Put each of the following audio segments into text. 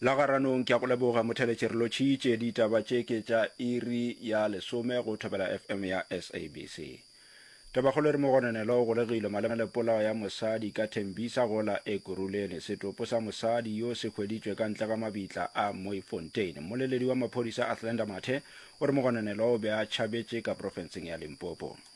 la garanong ke ya go leboga motheletše re lotšhitše ditaba tše ke tša iri ya lesome go thobela fm ya sabc tabakgolo re mogononelo o golegile malema le polao ya mosadi ka thembisa gola e kurulene setopo sa mosadi yo se hweditšwe ka ntle ga mabitla a moifontein mmoleledi wa maphodisa athlenda mathe o re mogononelo o be a tšhabetše ka profenseng ya limpopo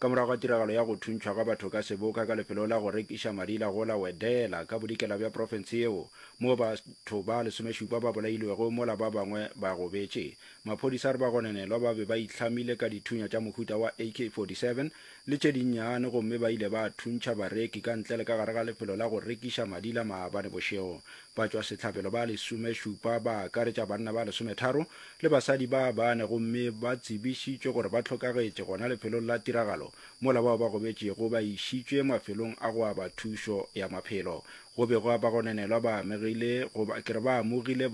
Ka morago ga tiragalo ya go thuntšhwa ga batho ka seboka ka lefelo la go rekiša madi la go la Wedela ka bodikela bja profense yeo, moo batho ba lesomešupa ba bolailwego mola ba bangwe ba gobetše, maphodisa a re bagononelwa ba be ba itlhamile ka dithunya tša mohuta wa AK-47 le tše dinnyane gomme ba ile ba thuntšha bareki ka ntle le ka gare ga lefelo la go rekiša madi la maabane bošego Batšwasehlabelo ba lesomešupa ba akaretša banna ba lesometharo le basadi ba bane gomme ba tsebišitšwe gore ba hlokagetše gona lefelong la tiragalo mola bao ba gobetšego ba išitšwe mafelong a go aba thušo ya maphelo. Go bego a ba gonenelwa ba amegile goba ke re ba amogile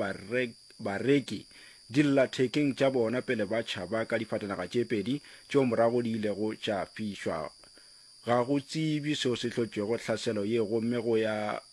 bareki dillathekeng tša bona pele ba tšhaba ka difatanaga tše pedi tšeo morago di ilego tša fišwa. Ga go tsebjwe seo se hlotšego hlaselo ye gomme go ya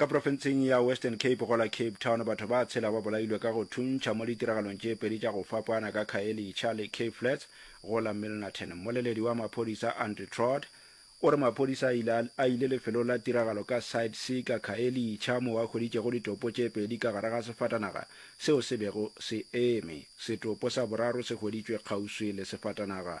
Ka profenseng ya Western Cape go la Cape Town, batho ba tshela ba bolailwe ka go thuntšha mo ditiragalong tše pedi tša go fapana ka Khayelitsha le Cape Flats go la Milnerton. Mmoleledi wa maphodisa Andrew Trott o re maphodisa a ile a ile lefelong la tiragalo ka Side C ka Khayelitsha moo a hweditšego ditopo tše pedi ka gare ga sefatanaga seo se bego se eme. Setopo sa boraro se hweditšwe kgauswi le sefatanaga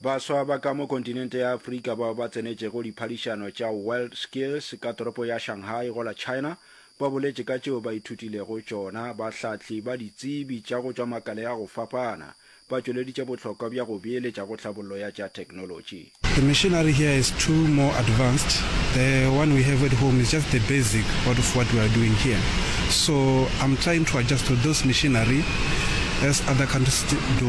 Baswa ba ka mo kontinente ya Afrika bao ba tsenetšego diphadišano tša World Skills ka toropo ya Shanghai go la China ba boletše ka tšeo ba ithutilego tšona. Bahlahli ba ditsebi tša go tšwa makale a go fapana ba tšweleditše bohlokwa bja go beeletša go tlhabollo ya tša theknolotši. The machinery here is too more advanced, the one we have at home is just the basic what of what we are doing here, so I'm trying to adjust to those machinery as other countries do.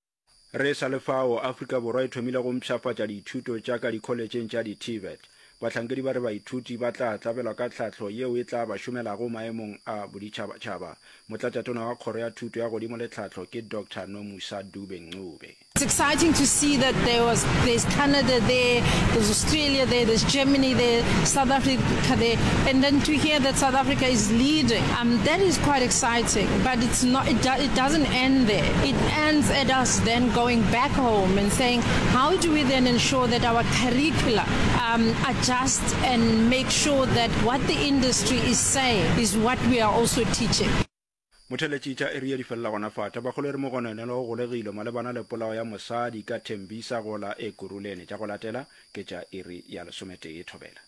Re sa le fao, Afrika Borwa e thomile go mpshafatša dithuto tša ka dikholetšheng tša di-TVET. Bahlankedi ba re baithuti ba tla tlabelwa ka tlhahlo yeo e tla ba šomelago maemong a boditšhabatšhaba. Motlatšatona wa Kgoro ya Thuto ya Godimo le Tlhahlo ke Doctor Nomusa Dube Ncube. It's exciting to see that there was there's Canada there, there's Australia there, there's Germany there, South Africa there, and then to hear that South Africa is leading. Um that is quite exciting but it's not it, do, it doesn't end there. It ends at us then going back home and saying how do we then ensure that our curricula um, adjust and make sure that what the industry is saying is what we are also teaching. Motheletšitša e rile di felela gona fata. Bagolo e re Mogononelo o golegilwe malebana le polao ya mosadi ka Thembisa go la Ekurhuleni. Tša go latela ke tša iri ya lesometee thobela.